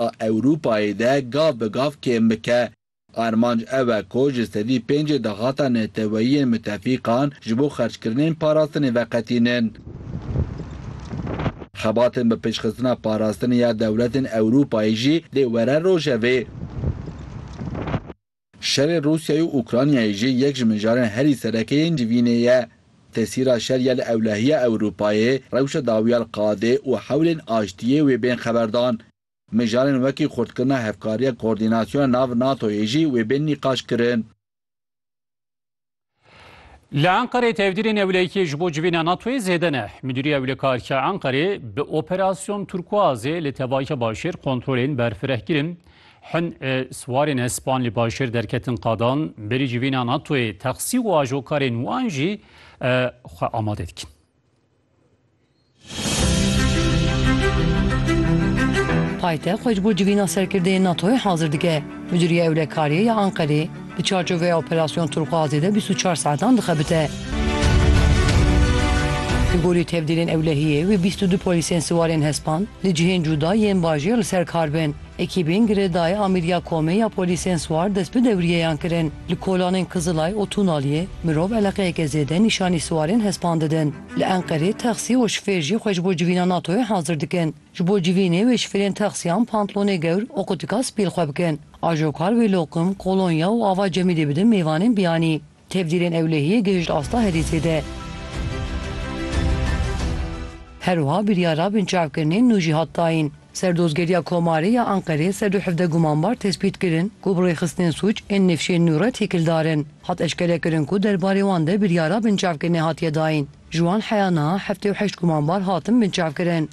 a Ewropayê de gav bi gav kêm bike. Armanc ew e ku ji sedî pêncê daxata neteweyiyên mitefîqan ji bo xerckirinên parastinê veqetînin. Xebatên bi pêşxistina parastinê ya dewletên Ewropayê jî dê were rojevê. Şerê Rûsyayê û Ûkranyayê jî yek ji mijarên herî sereke yên civînê ye. Tesîra şer ya li ewlehiya Ewropayê, rewşa dawiya li qadê û hewlên aştiyê wê bên xeberdan. Mijarên wekî xurtkirina hevkariya koordînasyona nav NATO'yê jî wê bên nîqaşkirin. Li Enqerê tevdîrê newleyikê ji bo civîna NATOyê zêde ne. Midûriya Wlêkarîya Enqerê bi operasyon Turkuazê li tevayika başêr kontrolên berfireh kirin. Hin e, siwarên hespan li başêr derketin qadan, berî civîna NATOyê texsî û ajokarên wan jî e, xwe amade dikin. Paytext xwe ji bo civîna serkirdeyên NATO'yê hazir dike. Midûriya Ewlekariyê ya Anqerê di çarçoveya Operasyon Turxuazê de bîst û çar saetan dixebite. Li gorî tevdîrên ewlehiyê wê bîst û du polîsên siwarên hespand li cihên cuda yên bajêr li ser kar bin. Ekîbên girêdayî amîriya komê ya polîsên siwar dest bi dewrîyeyan kirin. Li kolanên Kizilay û Tunaliyê mirov eleqeyeke zêde nîşanî siwarên hespan didin. Li Enqerê texsî û şifêr jî xwe ji bo civîna NATO'yê hazir dikin. Ji bo civînê wê şifêrên texsiyan pantlonê gewr û qutika spî li xwe bikin. Ajokar wê loqim, kolonya û ava Cemîlê bidin mêvanên biyanî. Tevdîrên ewlehiyê gihişt asta herî zêde. Her wiha biryara binçavkirinên nû jî hat dayîn. Serdozgeriya Komarê ya Enqerê ser du hevdeh gumanbar tespît kirin ku bi rêxistinên sûc ên nifşên nû re têkildar in. Hat eşkere kirin ku derbarê wan de biryara binçavkirinê hatiye dayîn. Ji wan heya niha heftê û heşt gumanbar hatin binçavkirin.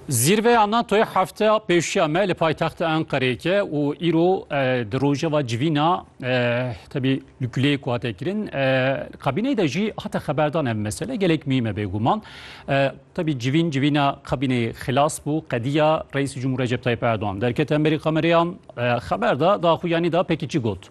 Zîrveya NATO'yê hefteya pêşiya me li paytexta Enqereyê ke û îro di rojeva civîna tebî li guleyê ku hate kirin kabîneyê de jî hate xeberdan ev mesele gelek mîme bêguman tebî civîn civîna kabîneyê xilas bû qediya Reîsî Cumhur Recep Tayyip Erdoğan derkete Amerîka me rêyan xeber da daxuyanî da pekî çi got.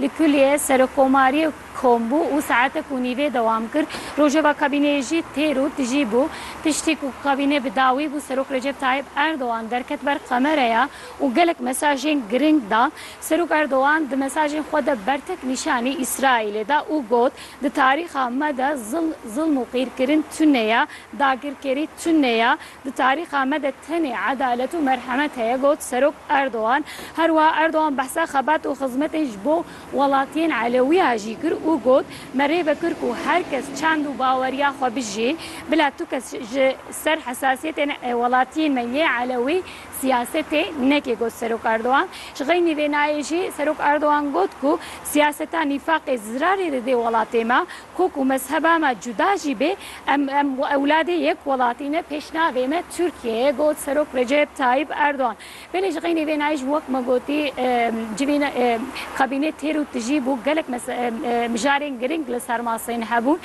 Li kulîyê Serokkomariyê kom bû û saetek û nîvê dewam kir. Rojeva kabîneyê jî têr û tijî bû. Piştî ku kabîne bi dawî bû, Serok Recep Tayyîp Erdogan derket ber kamereya û gelek mesajên giring da. Serok Erdogan di mesajên xwe de bertek nîşanî Îsraîlê da û got, Di tarîxa me de zilm û qîrkirin tune ye, dagirkerî tune ye. Di tarîxa me de tenê edalet û merhemet heye, got Serok Erdogan. Her wiha Erdogan behsa xebat û xizmetên ji bo welatiyên Elewî ya jî kir û got, Me rê vekir ku her kes çend û baweriya xwe bijî, bila tu kes ji ser hesasiyetên welatiyên me yê Elewî siyasetê neke, got Serok Erdogan. Ji xeynî vê nayê jî Serok Erdogan got ku siyaseta nîfaqê zirarê didê welatê me, Ku ku mezheba me cuda jî bê, em em ewladê yek welatî ne, pêşnavê me Tirkiye ye, got Serok Recep Tayyîp Erdogan. Belê ji xeynî vênayî jî wek me gotî civîn kabîne têr û tijî bû, gelek mijarên giring li ser masa yên hebûn.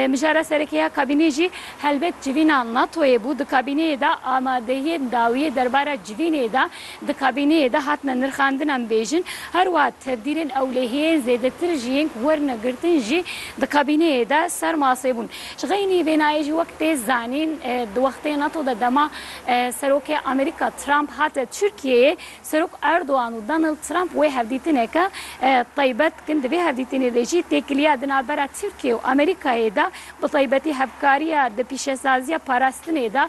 Mijara serekê ya kabînê jî helbet civîna NATO'yê bû. Di kabîneyê de amadehiyên dawiyê derbara civînê de Di kabîneyê de hatine nirxandinan bêjin, her wiha tevdîrên ewlehiyên zêdetir ji yên ku werine girtin jî di kabîneyê de ser masê bûn. Ji xeynî vê nayê jî wek tê zanîn di wextê nato de dema Serokê Amerîka Trump hate Tirkiyeyê, Serok Erdogan û Donald Trump wê hevdîtineke taybet dikin. Di vê hevdîtinê de jî têkiliya di navbera Tirkiye û Amerîkayê de bi taybetî hevkariya di pîşesaziya parastinê de,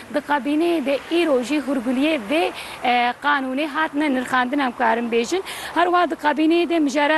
Di kabîneyê de îro jî hûrguliyê vê qanûnê hatine nirxandin em karin bêjin. Herwiha di kabîneyê de mijarê